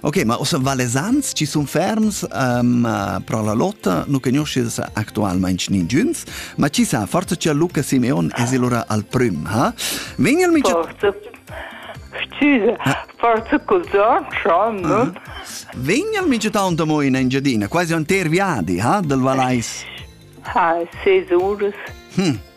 Ok, ma ossa valesans ci sun ferms um, pro la lotta, nu conoscis actualmente ninguns, ma ci sa, forza che Luca Simeon es ilura al prim, ha? Vin il mica... Forza, scusa, forza cos'on, Sean, no? Uh -huh. Vin il mica taunt amo in Engiadina, quasi un ter viadi, ha, del Valais? Ha, ses uras. Hm,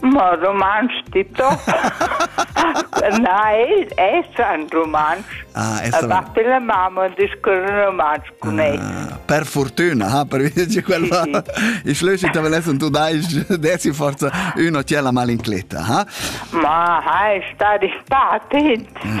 Ma rumantsch di top. Na, el essa in rumantsch. Ah, essa e batti la mamma e discorre rumantsch con ah, ei. Per fortuna, ha, per dirci quella. Sì, sì. I schlöschi te velesson tu dai desi forza uno tiè la malincletta, ha? Ma hai stati stati, mm.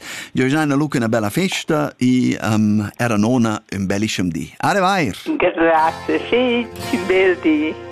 Jo jana luca una bella festa e um, era nona un bellischem di. Are vair! Grazie, sì, un bel di.